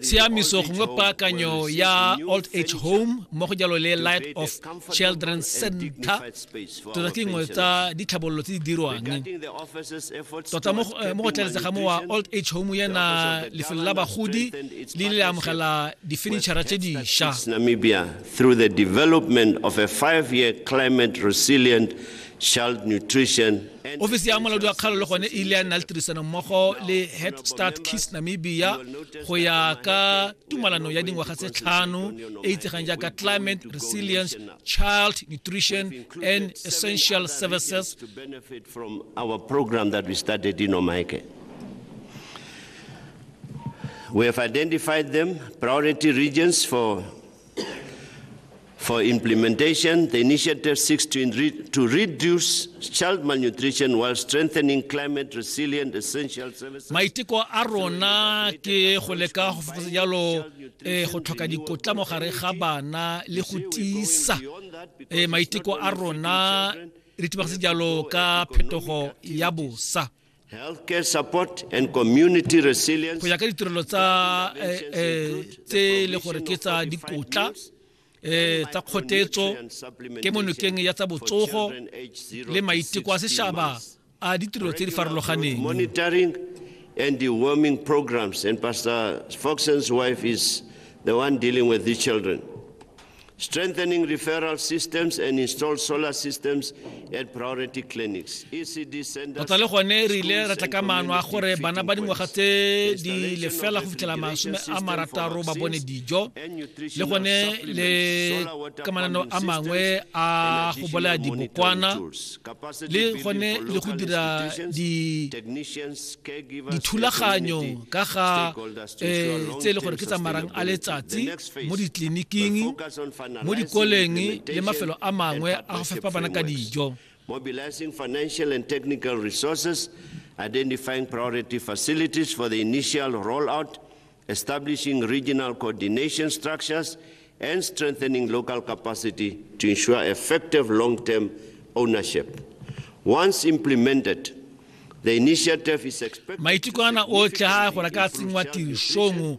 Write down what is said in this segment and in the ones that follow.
Tshiamiso gongwe paakanyo ya old age home mo go jalo le light of children center tota ke nngwe tsa ditlhabololo tse di dirwang tota mo eh, go tlaletsega mo wa old age home yana lefelo la bagodi le le amogela difenitšhara tse dišwa namibia through the development of a five year climate resilient child nutrition ofisi ya molaodi wa kgalo le gone e ile ya nna le tirisanommogo le head start kiss namibia go ya ka tumalano ya dingwaga tse tlhano e itsegang jaaka climate resilience child nutrition and essential services We have identified them priority regions for For implementation, the initiative seeks to, enri- to reduce child malnutrition while strengthening climate resilient essential services. maiteko a rona ke go leka go fokotsa jalo eh, go tlhoka dikotla mo gare ga bana le go tiisa eh, maiteko a rona re tibagase jalo ka phetogo ya bosa healthcare support and community resilience go ya ka ditirelo tsa eh, eh, tse e le gore ke tsa dikotla eh tsa kgotetso ke monokeng ya tsa botsogo le maiteko a seshaba a ditirelo tse di farologaneng monitoring and the warming programs and pastor foxen's wife is the one dealing with these children tota le gone re ile ra tla ka maano a gore bana ba dingwaga tse di lefela go fitlhela masome a marataro ba bone dijo le gone le ka mananeo a mangwe a go bolaya dibokwana le gone le go dira dithulaganyo ka ga eh, tse e le gore ke tsamarang a letsatsi mo ditleliniking mo dikoleng le mafelo a mangwe a go fepa bana ka dijo mobilizing financial and technical resources identifying priority facilities for the initial rollout establishing regional coordination structures and strengthening local capacity to ensure effective long-term ownership once implemented maiteko ana otlhe a gore ka tsenngwa tirisong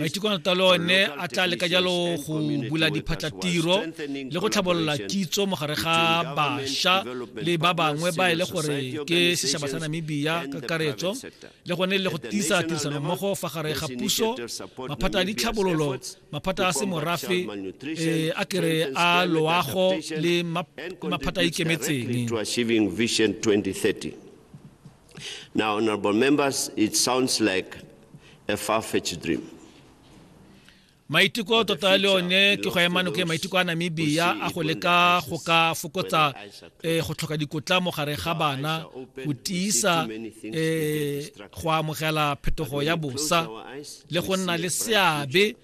maiteko a tota one a tla leka jalo go bula diphatlatiro le go tlhabolola kitso mogare ga bašwa le ba bangwe ba e le gore ke setšhaba sa namibia kakaretso le gone le go tiisa tirisanommogo fa gare ga puso maphata a ditlhabololo maphata a semorafe eh, a kere a loago le maphata a ikemetseng Now, honorable members, it sounds like a far-fetched dream. maiteko tota le one ke go ema noke maiteko a namibia a go leka go ka fokotsa um go tlhoka dikotla mo gare ga bana go tiisa um go amogela phetogo ya bosa le go nna le seabe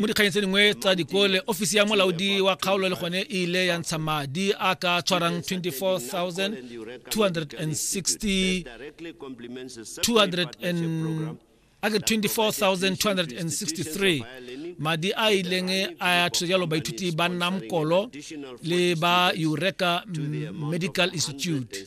mo dikganyeng tse dingwe tsa dikole ofisi ya molaodi wa kgaolo le gone e ile ya ntsha madi a ka tshwarang 24260 a ke 24263 madi a ileng a thusa jalo baithuti ba namkolo le ba eureka medical institute